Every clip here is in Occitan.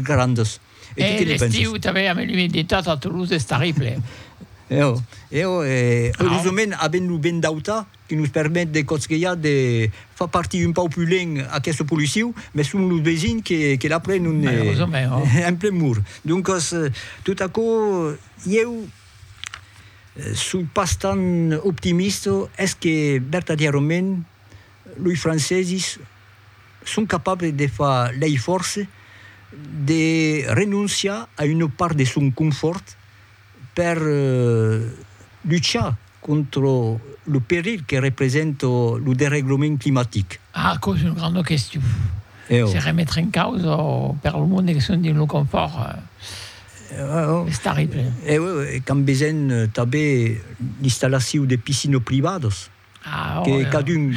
grandas. E tu que ne pensas? E l'estiu tanben amb l'umiditat a Toulouse es terrible. Eo, eo e erosument avent lo vent d'auta que nos permet de cotgellar de far partir un pauc plus lent aqueste policiu, mès son los vesins que que l'après non ne Malerosament, ò. En plen mur. Doncas, tot aquò ieu soi pas tant optimista, es que vertadièrament Loi francesis son capables de far lei fòrce de renonciar a una part de son confòrt per luchar contra lo perilh que representa lo dereglament climatic. Ah, aquò es una granda question. Se remetre en causa per lo monde que son dins lo confòrt es terrible. Quand vesen tanben l'installacion de piscinas privadas. que cadun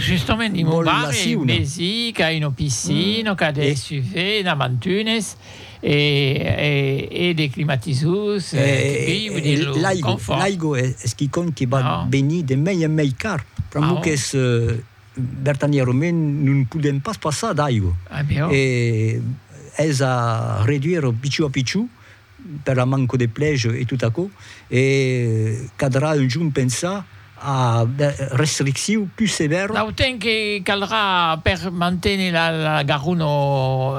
vòl la siuna. Mesi qu'a una piscina, qu'a de suver, e na mantunes, e de climatisors, l'aigo, l'aigo es quicònh que va venir de mei en mei car, pr'amor qu'es vertanièrament non podèm pas passar d'aigo, e es a reduire pichó a pichó, per la manco de plèj e tot aquò, e cadrà un jorn pensar a de restricciu pus sevèra. Dau temps que caldrà per manténer la garona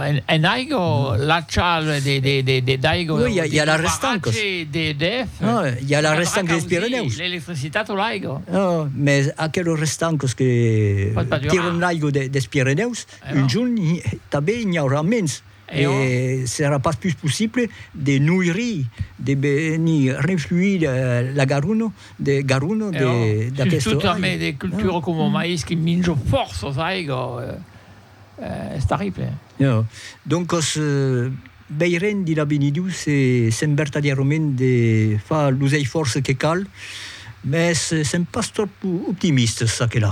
en aiga, l'achal de d'aiga o de barratge d'EDF, caldrà causir l'electricitat o l'aiga. No, mès aqueles restancas que tiran l'aiga des Pirenèus, un jorn tanben n'i aurà mens. E s'èra pas pus possible de noiri, de venir renfluir la Garonne de Garonne de d'aquesta. Surtout a mai de cultura coma mais qui minjo fòrça aiga, es terrible. E doncas veirem dins l'avenir se sèm vertadièrament de far los eifòrces que cal, mès sèm pas tròp optimistes çaquelà.